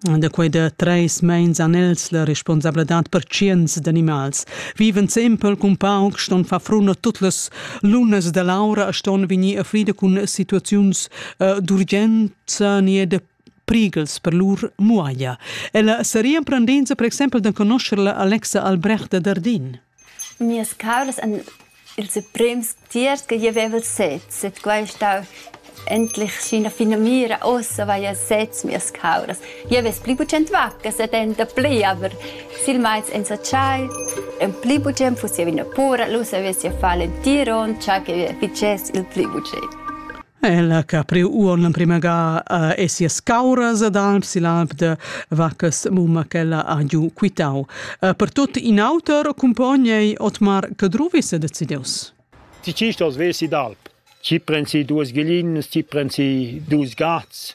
Da quei da treis meins han els la responsabladad per tschients d'animals, viven sempel cun pauc, ston far frun a tut las lunas da l'aura e ston vegnir a frida cun situaziuns uh, d'urgenza ni da prighels per lur muaglia. Ella seria emprendenza per exempel da conoscer la Alexa Albrecht da Dardin. Mias cauras han ils emprems tiers che jeu vevel sez, sut quei ei stau endlich sc'ina finamira. Ussa vaiel sez mias cauras. Jeu vess pli bugen vaccas ed ein dapli, aber silmeins ins ha tschai. En pli bugen fuss jeu ina pura, lu savess jeu far l'entir onn, tschai che fitschess il pli bugen. Ella che ha priu uonn l'emprema ga uh, e sias cauras ad alp sil alp de vaccas mumma ch'ella ha giu quitau. Uh, per tut in auter accumpogn ei Otmar Cadruvis e decideus. Ti ci stos vesi d'alp. Ci prensi duas ghelinas, ci prensi dus gats.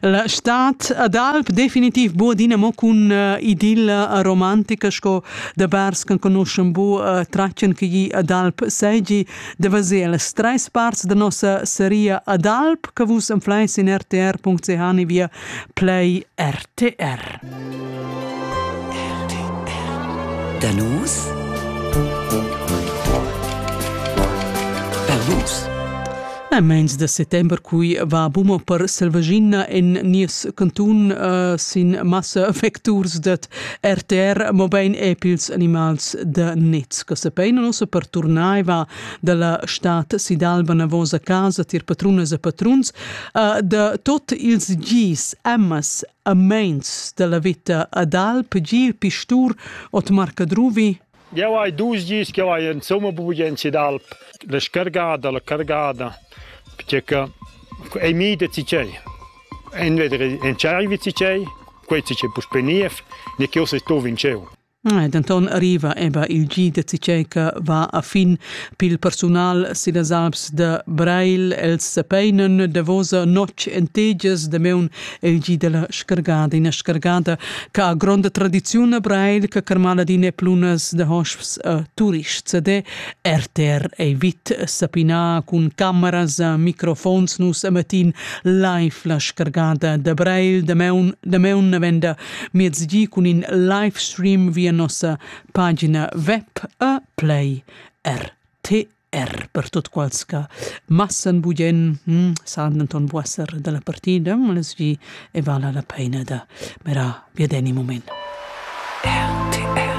La stad ad alp definitiv bu adina mo cun uh, idilla romantica sco da bars che conoschan bu uh, tratschen che gli ad alp seigi da vaser las treis parts da nossa seria ad alp che vus enfleis in rtr.ch ni via play rtr. Danus Balus A meins da settember cui va buma per Selvagina en nies cantun uh, sin massa vecturs dat RTR, mobein epils animals da nets, che sapein nossa per turnaiva dalla stat Sidalba navosa casa tir patrunas e patruns, uh, da tot ils gis amas a meins dalla vita ad Alp, gil pistur, ot marcadruvi, Jeu hai dus dis ch'jeu hai insumma bugen d'alp, la scargada, la cargada, pertgei che ei midet si tgei. Entweder entscheivi si tgei, quei si tgei puspei niev, ni ch'jeu sestuv in tscheu. Denton arriva eba il gi da tgei che va a fin pil persunal sillas Alps de Breil. Els sepeinen davosa notg en tegias da meun eigi della scargada ina scargada che ha gronda tradiziun a Breil che carmala dine plunas de hosps a turists de RTR ei vit sapina cun cameras a microfons nus a matin live la scargada de Breil de meun de meun venda miezgi cun in live stream via nossa pagina web a Play RTR er per tut quels che massen bugen hm, san denton buesser dalla partida, less gi e vala la peina da mirar biadeni moment. RTR